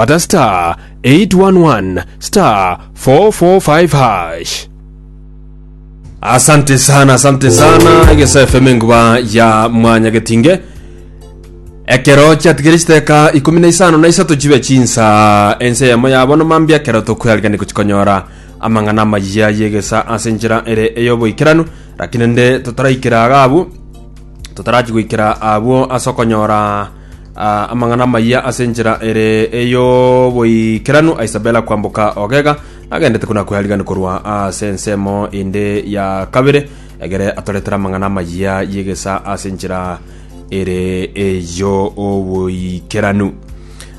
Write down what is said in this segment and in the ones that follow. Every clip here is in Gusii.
bata star 811 star 445 hash. Asante sana, asante sana. Egesa FM enguba ya mwanya getinge. Ekero chiatigere chiteka ikumi na isano na isato chibe chinsa ense yamo yabono mambia ekero tokweriganire gochikonyora amang'ana amayia yegesa ase enchera ere eyoboikeranu lakini nde totaraikera agabu totarachigwikira abwo ase okonyora Ah, amang'ana amayia ase enchera ere ey'oboikeranu a Isabella kwamboka ogega nagendete kona kwearigani korwa ase ensemo ende ya kabere egere atoretere amang'ana amayia y'egesa ase enchera ere ey'oboikeranu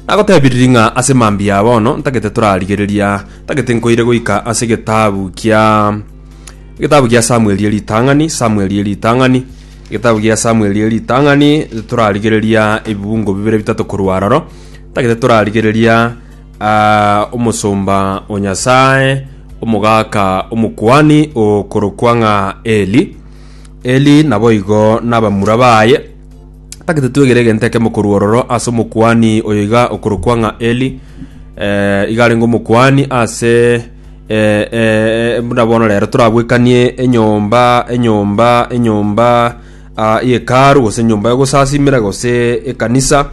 nagotebiririe ng'a ase mambia bono ntagete torarigereria ntagete nkoire goika ase getabu kia getabu gia samueli eritang'ani samueli eritang'ani Getabu gia Samweli ritang'ani, torarigereria ebibungo bibere bitato korwa aroro. Tagete torarigereria ah, omosomba o Nyasae, omogaka omokuani okorokwa ng'a Eli. Eli naboigo nabamura baye. Tagete twegere egento ekemo korwa ororo ase omokuani oyo iga okorokwa ng'a Eli. Eh, iga arenge omokuani ase Ee, ee, buna bono rero torabwekanie enyomba, enyomba, enyomba ah, y'Hekalu, gose enyomba y'ogosasimera, gose ekanisa,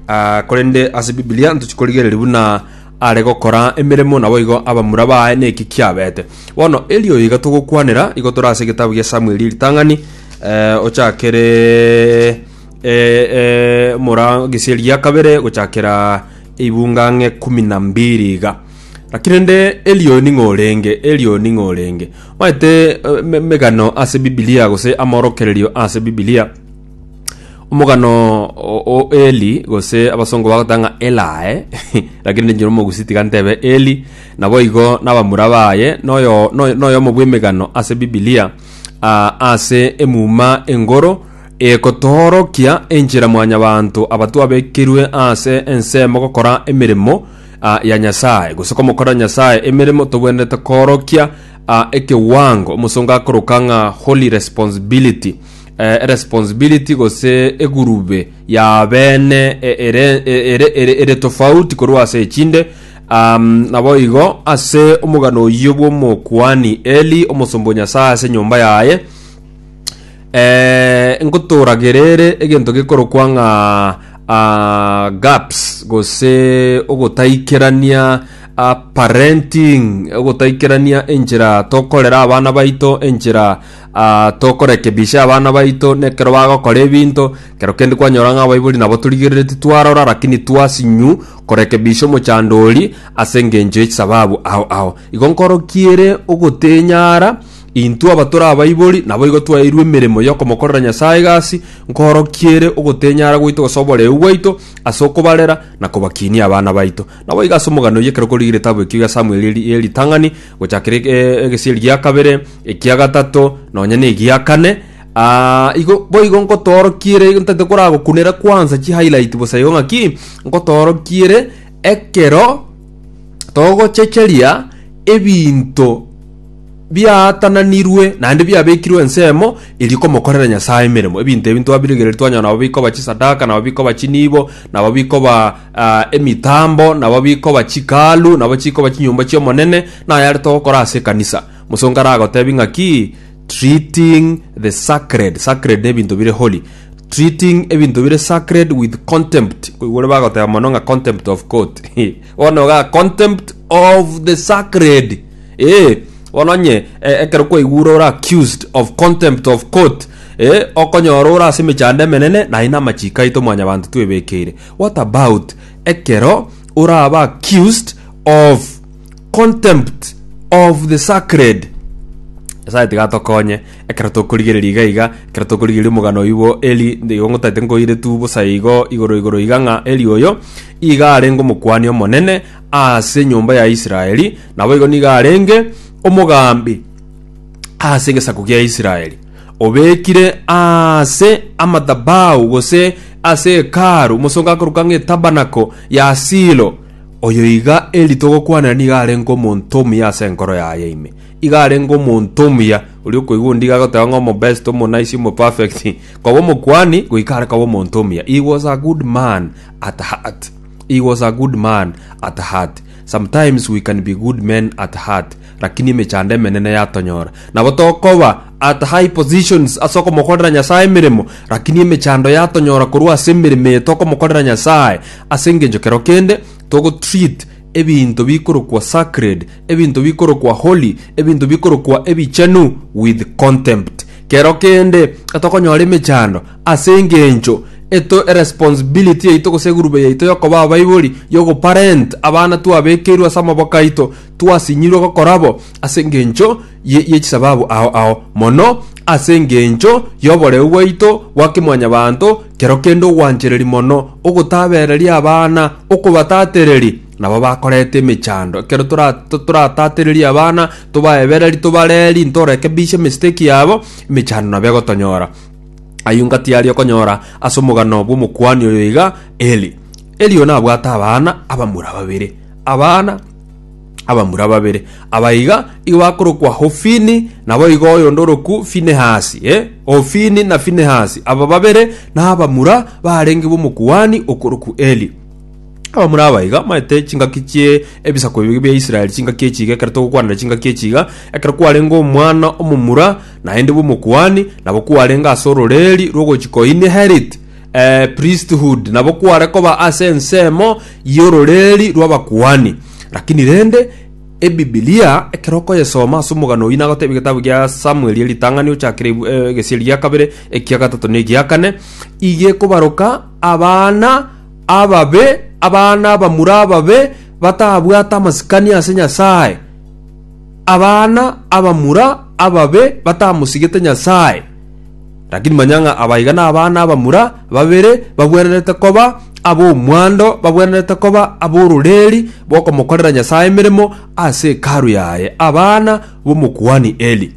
ah, korende ase Biblia ntochi korigereria buna are gokora emeremo naboigo abamura baye neki kiabete. Bono erio iga togokwanera, igo tore ase egetabu gia Samueli eritang'ani, eh, ochakere eh, eh, mora gesieri gia kabere gochakera eibunga ng'e kumi na mbiri iga. Lakini rende Elioni ng'a orenge, Elioni ng'a orenge. Omanyete em- emegano ase Bibilia gose amorokererio ase Bibilia, omogano o- o Eli gose abasongo bagoteba ng'a Elae, lakini ninche nomogusii tiga ntebe Eli, naboigo na abamura baye, noyo noyo noyomo bw'emegano ase Bibilia, ah, ase emuma engoro, egotoorokia enchera mwanyabanto aba twabekerwe ase ensemo gokora emeremo, a, ya Nyasae, gose komokorera Nyasae emeremo, togwenerete koorokia a, ekewango omosongo akoroka ng'a holy responsibility eh, responsibility gose egurube ya bene e- ere, e- ere, ere, ere tofauti korwa ase echinde um, nabo igo ase omogano oyio bw'omokuani Eli omosomba o Nyasae ase enyomba yaye Ee, nkotoragere ere egento gekorokwa ng'a ah, gaps gose ogotaikerania ah, parenting ogotaikerania enchera tokorera abana baito enchera ah, tokorekebisha abana baito nekero bagokora ebinto kero kende kwanyora ng'a abaibori nabo torigerereti twarora lakini twasinyu korekebisha omochando oria ase engencho y'echisababu ao ao igo nkorokiere ogotenyara Intwe abatore abaibori naboigo twaeirwe emeremo y'okomokorera Nyasae egasi, nkoorokia ere ogotenyara gwaito gose oboreu bwaito ase okobarera na kobakinia abana baito. Naboigo ase omogano oyio ekero korigire etabu ekio ya Samueli ye ritang'ani, gochakera egesieri gia kabere, ekia gatato, nonya negia kane, aa, igo boigo nkotoorokia ere, ntaete koragokunera kwansa chihighlight bosa igo ng'aki, nkotoorokia ere ekero togochecheria ebinto biaatananirwe naende biabekirwe ensemo eria komokorera Nyasae emeremo. Ebinto ebi ntwabiregereria twanyora nabo bikoba chisadaka, nabo bikoba chinibo, nabo bikoba ah, emitambo, nabo bikoba chikalu, nabo chikoba chinyomba chi'Omonene, naye are togokora ase ekanisa. Mosongo aragotebi ng'aki treating the sacred. Sacred ne ebinto bire holy. Treating ebinto bire sacred with contempt. Koigure bagoteba mono ng'a contempt of court. Bono iga contempt of the sacred. Ee, bono onye e- ekero kwaigwa ore ore accused of contempt of court, ee, okonyora ore ase emechando emenene, naye namachiiko aito mwanyabanto twebekeire. What about ekero orabe accused of contempt of the sacred? Nyasaye tiga atokonye ekero tokorigereria iga iga, ekero tokorigereria omogano oyio bwo Eli, ndigo ngotaete nkoire tu bosa igo igoro igoro iga ng'a Eli oyo iga arenge omokuani omonene Ase enyomba ya Israeli naboigo nigo arenge omogambi ase egesaku gia Israeli, obekire ase amadhabahu gose ase Hekalu omosongo akorokwa ng'a Etabanako ya Silo. Oyo iga eri togokwanera nigo arenge omonto omuya ase enkoro yaye ime. Igo arenge omonto omuya, oria okoigwa ondigo agoteba ng'a omobest, omonaisi, omoperfect, koba omokuani, goika are koba omonto omuya. He was a good man at heart. He was a good man at heart. Sometimes we can be good men at heart lakini emechando emenene yatonyora. Nabo tokoba at high positions ase okomokorera Nyasae emeremo lakini emechando yatonyora korwa ase emeremo eye tokomokorera Nyasae ase engencho kero kende togotreat ebinto bikorokwa sacred, ebinto bikorokwa holy, ebinto bikorokwa ebichenu with contempt. Kero kende etokonyora emechando Ase engencho eto eresponsibility yaito gose egurube yaito yokoba abaibori yogoparent abana twabekeirwe ase amaboko aito, twasinyirwe gokora bo ase engencho ye ye chisababu ao ao, mono ase engencho yoboreu bwaito bwa kemwanyabanto kero kende ogwanchereri mono ogotabereria abana okobatatereri nabo bakorete emechando ekero tora toratatereria abana tobaebereri tobareri ntoreke bishe mistake yabo emechando nabo egotonyora. Ayio inga tiari okonyora ase omogano bw'omokuani oyo iga Eli. Eli oyo nabwate abana abamura babere. Abana abamura babere aba iga igo bakorokwa Hofini, nabo igo oyonde orokwu Finehasi, eh? Hofini na Finehasi, aba babere nabamura barenge b'omokuani okorokwu Eli. Abamura aba iga maete chingaki chie ebisaku ebio bia Israeli, chingaki echi iga ekero togokwanera chingaki echi iga, ekero kwarenge omwana omomura Naende bw'omokuani nabo kwarenge ase ororeeri rw'ogochika o inherit, ee, priesthood, nabo kware koba ase ensemo y'ororeeri rw'abakuani. Lakini rende, Ebibilia, ekero okoyesoma ase omogano oyio nagotebia egetabu gia Samueli eritang'ani ochakire ebu- eh, egesieri gia kabere, ekia gatato na egia kane, iga ekobaroka abana ababe, abana abamura ababe, batabwate amasikani ase Nyasae. abana abamura ababe batamosigete Nyasae. Rakini manya ng'a aba iga nabana abamura babere bagwenerete koba ab'omwando, bagwenerete koba ab'ororeeri bw'okomokorera Nyasae emeremo ase Hekalu yaye, abana b'omokuani Eli.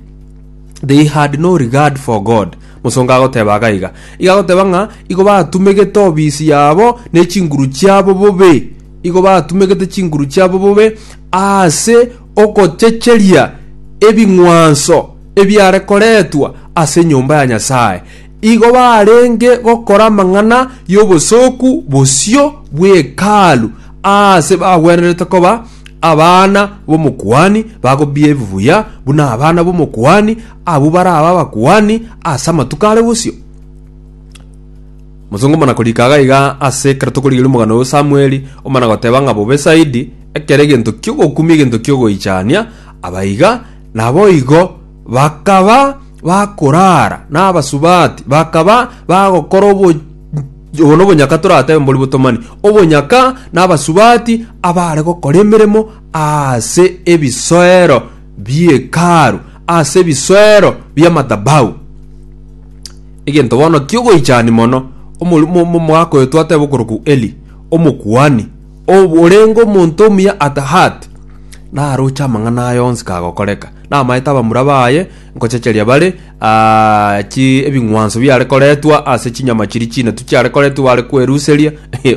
They had no regard for God. Mosongo agoteba aga iga, iga agoteba ng'a igo batumegete obisi yabo ne chinguru chiabo bobe. Igo batumegete chinguru chiabo bobe ase ogochecheria ebing'wanso ebiare koretwa ase enyomba ya Nyasae. Igo barenge gokora amang'ana y'obosooku bosio bw'Hekalu aase bagwenerete koba abana b'omokuani, bagobiia ebibuya buna abana b'omokuani, abwo barabe abakuani ase amatuko are bosio. Mosongo omona-korika agaiga ase ekero tokorigereria omogano oyio Samweli, omona-goteba ng'a bobe zaidi ekero egento ki'ogokumia egento ki'ogoichania abaiga, naboigo bakaba bakoraara nabasubati, bakaba bagokora obo Obo nobonyaka toratebe mbori botomani, obonyaka nabasubati abaare gokora emeremo aase ebisoero bi'Hekalu, aase ebisoero bi'amadhabahu. Egento bono ki'ogoichani mono, omorimo omomoaka oyo twateba okorokwa Eli, omokuani, ob- orenge omonto omuya at heart, naroche amang'ana aye onsi kagokoreka, namaete abamura baye nkochecheria bare ah, chi ebing'wanso biare koretwa ase chinyama chiria chinatu chiare koretwa bare kweruseria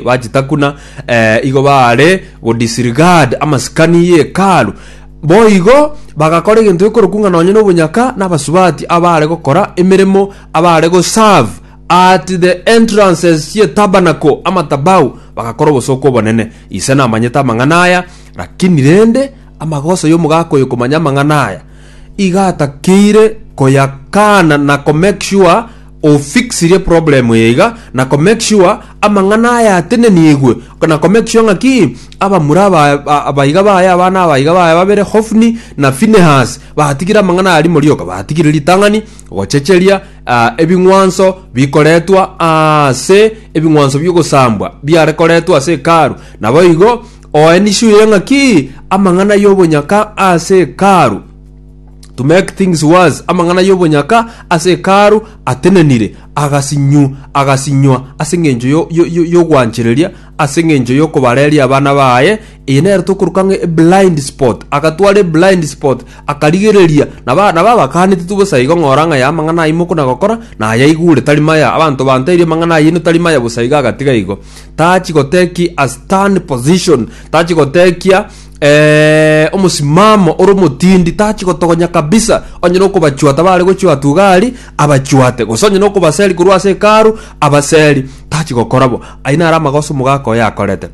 bachitakuna eh, igo bare go disregard amasikani y'Hekalu. Boigo bagakora egento gekorokwa ng'a nonye nobonyaka nabasubati abaare gokora emeremo abaare goserve at the entrances y'etabernacl, amatabau, bagakora obosooku obonene. Ise namanyete amang'ana aya, lakini rende amagoso y'omogaka oyo komanya amang'ana aya, iga atakeire koyakaana na komake sure ofixire problem eye iga na ko make sure amang'ana aya atenenigwe na ko make sure ng'aki abamura aba- aba- abaiga baye abana abaiga baye babere hofni na finehas batigire amang'ana aya rimo rioka batigire ritang'ani gochecheria ah, ebing'wanso bikoretwa ase ebing'wanso bi'ogosambwa biare koretwa ase hekalu naboigo oenisure ng'aki amang'ana y'obonyaka ase hekalu To make things worse, amang'ana y'obonyaka ase Hekalu atenenire, agasinywa, agasinywa ase engencho yo- yo- yo- y'ogwanchereria, ase engencho y'okobareria abana baye, eye nere tokoruka ng'a eblind spot, agatwara eblind spot, akarigereria, naba naba abakaanete tu bosa igo ng'ora ng'a ya amang'ana ayio mokona gokora, nayaigure tari maya, abanto banteirie amang'ana ayino tari maya bosa iga agatiga igo. Tachi gotekia a stern position, tachi gotekia. Eh, omosimamo ore omotindi tachi gotogonya kabisa onye nokobachwata bare gochwa tugari abachwate gose onye nokobaseri korwa ase ekaru abaseri tachi gokora bo ayi nare amagoso omogaka oyo akorete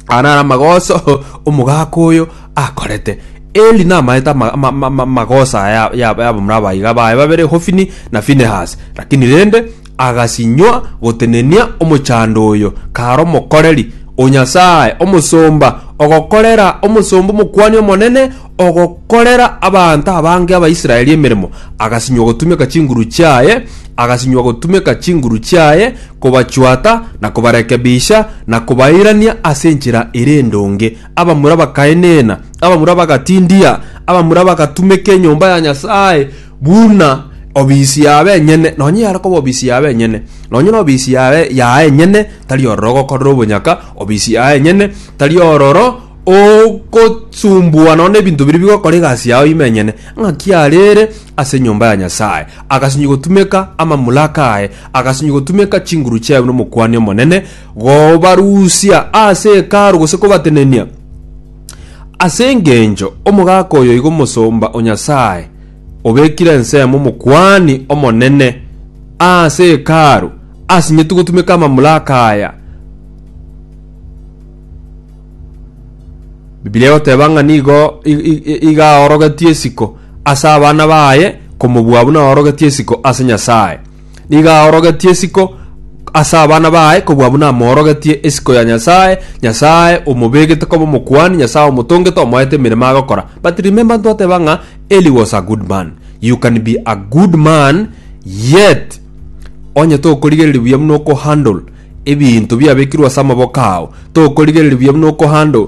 aya nare amagoso omogaka oyo akorete eli namaete ama- ama- ama- ama- amagoso aya ya- ya- yabamura abaiga baye babere hofini na finehas lakini rende Agasinywa gotenenia omochando oyo, kare omokoreri o Nyasae, omosomba, ogokorera omosomba omokuani omonene, ogokorera abanto abange Abaisraeli emeremo. Agasinywa gotumeka chinguru chiaye, agasinywa gotumeka chinguru chiaye, kobachwata, na kobarekebisha, na kobairania ase enchera ere endonge. Abamura bakaenena, abamura bagatindia, abamura bagatumeka enyomba ya Nyasae, buna obisi yaabo enyene, nonye yare koba obisi yaabo enyene, nonye nobisi yaye yaye enyene tari ororo ogokorera obonyaka, obisi yaye enyene tari ororo ogosumbua nonya ebinto biria bigokora egasi yao ime enyene, ng'aki arere ase enyomba ya Nyasaye, agasinyi gotumeka amamlaka aye, agasinyi gotumeka chinguru chiaye buna omokuani omonene, gobarusia ase Hekalu gose kobatenenia ase engencho omogaka oyo igo omosomba o Nyasaye. obekire ensemo Omokuani Omonene ase Hekalu, asinyetie gotumeka amamlaka aya. Bibilia egoteba ng'a nigo i- i- i- iga aorogetie isiko ase abana baye komobua buna aorogetie isiko ase Nyasae. Nigo aorogetie isiko ase abana baye kobua buna amoorogetie isiko ya Nyasae, Nyasae omobeegete koba omokuani, Nyasae omotongete, omoete emeremo agokora. But remember ntwateba ng'a Eli was a good man. You can be a good man yet onye tokorigereria buya buna okohandle ebinto biabekirwe ase amaboko ao, tokorigereria buya buna okohandle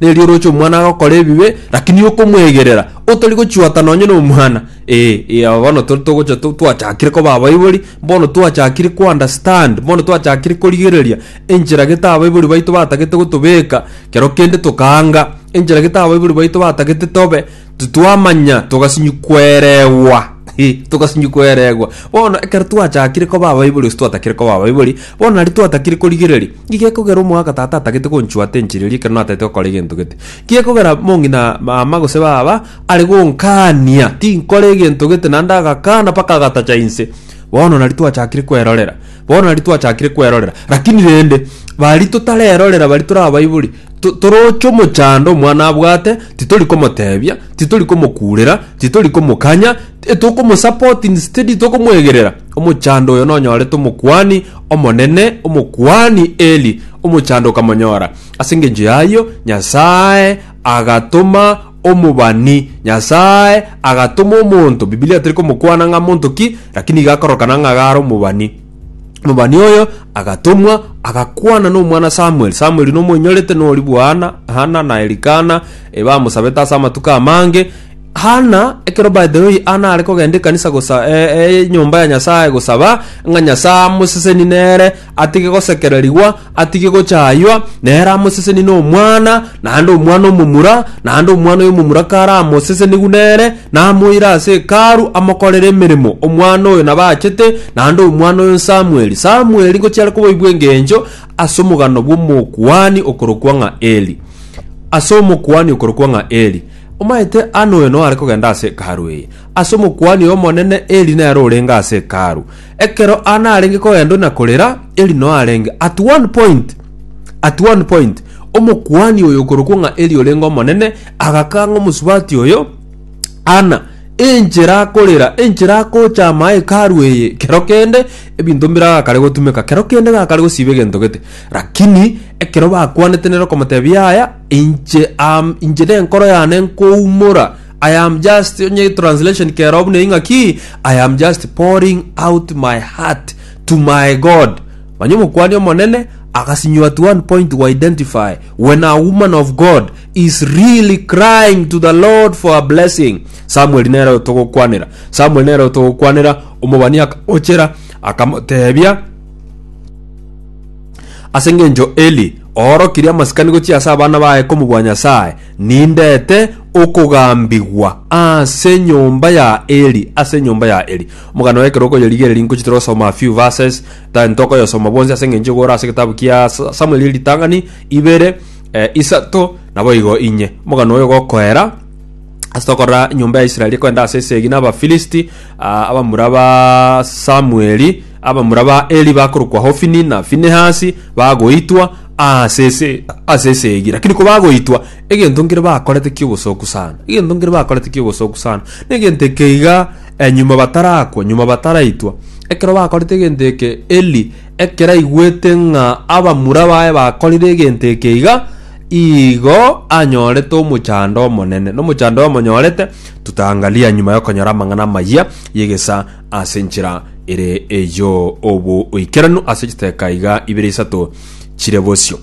Nerio oroche omwana agokora ebibe, lakini okomwegerera, otori gochiwata nonye nomwana. Ee, ee, aba bono tori togocha to- twachakire koba abaibori, bono twachakire ko understand, bono twachakire korigereria enchera gete abaibori baito batagete gotobeka, kero kende tokaanga enchera gete abaibori baito batagete tobe, Titwamanya togasinyi kweregwa. Hi, togasinyi kweregwa. Bono ekero twachakire koba abaibori gose twatakire koba abaibori, bono nari twatakire korigereria. Nki gekogera omogaka tata atagete konchuata enchera eria ekero natete gokora egento gete? Nki gekogera mong'ina mama gose baba are gonkania tinkore egento gete naende agakana mpaka agatacha inse? Bono nari twachakire kwerorera. Bono nari twachakire kwerorera, lakini rende bari totarerorera bari torabaibori, to- toroche omochando omwana abwate, titori komotebia, titori komokurera, titori komokanya, ti- tokomosupport instead tokomwegerera. Omochando oyo nonyorete omokuani omonene, omokuani Eli, omochando okamonyora. Ase engencho y'ayio, Nyasae agatoma omobani, Nyasae agatoma omonto, Bibilia teri komokwana ng'a monto ki, lakini iga akorokana ng'a gare omobani. Omobani oyo agatomwa agakwana nomwana Samuel. Samuel nomoinyorete nori bwana Hana na Elikana ebamosabete ase amatuko amange. Hana ekero by the way Hana are kogenda ekanisa gosa e, e, nyomba ya Nyasae gosaba ng'a Nyasae amoseseni nere atige gosekererigwa, atige gochaywa, nere amosesenie n'omwana, naende omwana omomura, naende omwana oyo omomura karamosesenigwe nere, namoire ase Hekalu amokorere emeremo, omwana oyo nabachete, naende omwana oyo Samueli. Samueli ngochiare koboigwa engencho ase omogano bw'omokuani okorokwa ng'a Eli. Ase omokuani okorokwa ng'a Eli. Omaete anoe noare kogenda ase Hekalu eye. Ase omokuani oyo omonene Eli nere orenge ase Hekalu. Ekero Ann arenge kogenda na korera, Eli noe arenge. At one point, at one point, omokuani oyo okorokwa ng'a Eli orenge omonene, agakanga omosubati oyo, Anna, enchera akorera, enchera agocha ama hekalu eye, kero kende ebinto mbire agakare gotumeka, kero kende gakare gosiba egento gete. Lakini ekero bakwanete nere okomotebia aya, inche am, inche nenkoro yane nkoumora, I am just onye translation keroo buna ing'aki I am just pouring out my heart to my God manya omokuani omonene agasinywa at one point we identify when a woman of God is really crying to the Lord for a blessing Samuel nere otogokwanera Samuel nere otogokwanera omobani akamochera akamotebia ase ng'encho Eli oorokirie amasikani gochia ase abana baye komobua Nyasaye Nindete okogambigwa ase nyomba ya Eli, ase nyomba ya Eli. Omogano ekero okoyerigereria nkochete gosoma a few verses, than tokoyosoma bwonsi ase engencho igoro ase egetabu kia Samuel eritang'ani, ibere, eh, isato, naboigo inye. Omogano oyo gokoera, ase tokorora enyomba ya Israeli ekoenda ase esegi na Abafilisti, ah, abamura ba Samueli, Abamura ba Eli bakorokwa Hofini na Finehasi bagoitwa aase ase ase esegi, lakini kobagoitwa, egento nkere bakorete ki'obosoku sana, egento nkere bakorete ki'obosoku sana. Negento eke iga eh, nyuma batarakwa, nyuma bataraitwa, ekero bakorete egento eke, Eli ekero aigwete ng'a abamura baye bakorire egento eke iga, igo anyorete omochando omonene, na omochando oyo amonyorete, tutaangalia nyuma y'okonyora amang'ana amayia y'egesaa. Ase enchera ere eyio oboikeranu ase chiteka iga ibere isato chire bosio.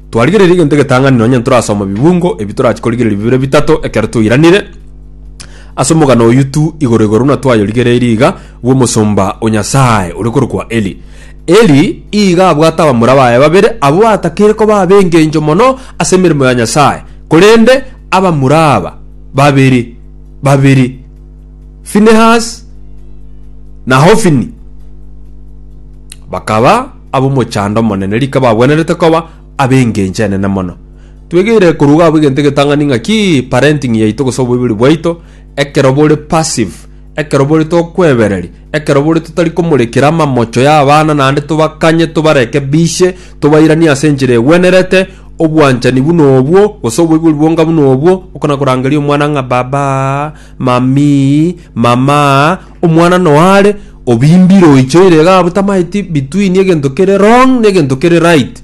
Twarigereria egento egetang'ani nonya ntorasoma bibungo ebi torachi korigereria bibere bitato ekero toiranire ase omogano oyio tu igoro igoro buna twayorigereirie iga bw'omosomba o Nyasae ore korokwa Eli. Eli iga abwate abamura baye babere abwo batakeire koba ab'engencho mono ase emeremo ya Nyasae, korende abamura aba babere babere Finehasi, na Hofini, bakaba ab'omochando omonene, rika bagwenerete koba ab'engencho enene mono. Twegeire koruga abwo egento egetang'ani ng'a ki parenting yaito gose oboibori bwaito, ekero bore passive, ekero bore tokwebereri, ekero bore totari komorekera amamocho y'abana naende tobakanye tobarekebishe, tobairanie ase enchera egwenerete, obwanchani buna obwo, gose oboibori bwonka buna obwo, okona korangeria omwana ng'a baba, Mamii, mamaa, omwana noare obimbire oichoire iga abwo tamaeti between egento kere wrong na egento kere right.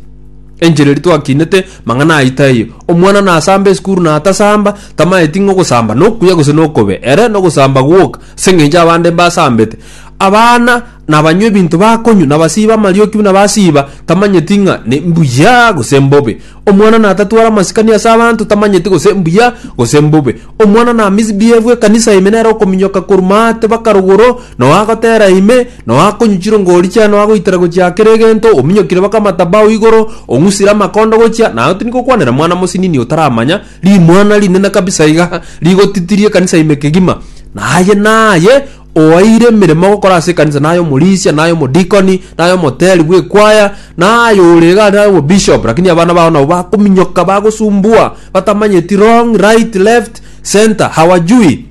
Enchera eria twakinete mang'ana ayio taiyo. Omwana nasamba esukuru natasamba, tamaeti ng'a ogosamba nokuya gose nokobe. Ere nogosamba gwoka, ase eng'encho abande mbasambete. Abana nabanywa ebinto bakonywa, nabasiba amarioki buna basiba, tamanyeti ng'a ne mbuya gose mbobe. Omwana natatware amasikani ase abanto tamanyeti gose mbuya gose mbobe. Omwana namisbiebwe ekanisa ime nere okominyoka korwa maate baka rogoro, na oagotera ime, na oakonyu chirongori chiaye na oagoitera gochia kera egento, ominyokire baka amatabao igoro, ong'usire amakondo gochia, naye tindi gokwanera mwana mosinini otaramanya, rimwana rinene kabisa iga, rigotitirie ekanisa ime kegima. Na aye naye oeire emeremo gokora ase ekanisa naye omorisia naye omodikoni naye omoteri bw'ekwaya naye ore iga naye obobishop lakini abana bao nabo bakominyoka bagosumbua batamanyeti wrong right left center hawajui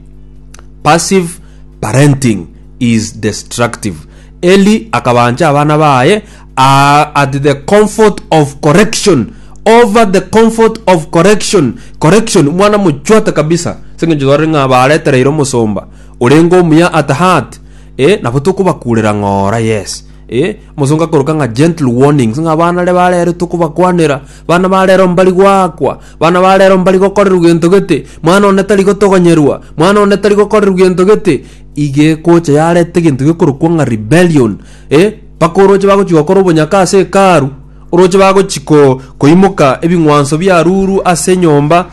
passive parenting is destructive eli akabancha abana baye are at the comfort of correction over the comfort of correction correction mwana mochwate kabisa seng'encho tware ng'a baretereire omosomba Orenge omuya at heart eh, nabo tokobakurera ng'ora yes eh, omosongo akoroka ng'a gentle warnings ng'a abana are barero tokobakwanera, bana barero mbari goakwa, bana barero mbari gokorerwa gento gete, mwana one tari gotogonyerwa, mwana one tari gokorerwa gento gete, iga ekocha yareta egento gekorokwa ng'a rebellion eh, mpaka oroche bagochia gokora obonyaka ase Hekalu, oroche bagochia ko koimoka ebing'wanso biarurwa ase enyomba,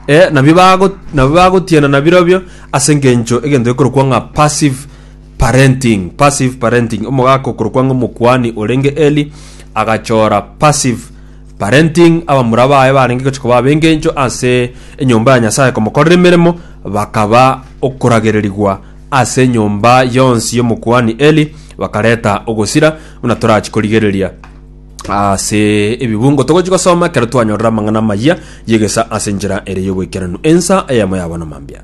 Ee, nabio bago, nabio bagotienana birobio ase engencho egento gekorokwa ng'a passive parenting. Passive parenting. Omogaka okorokwa ng'a omokuani orenge Eli agachora passive parenting abamura baye barenge gochia koba ab'engencho ase enyomba ya Nyasae komokorera emeremo bakaba okoragererigwa ase enyomba yonsi y'omokuani Eli bakareta ogosira buna torachi korigereria. ase ebibungo togochi gosoma ekero twanyorire amang'ana amayia y'egesa ase enchera ere y'oboikeranu ensa eyemo yabo na mambia.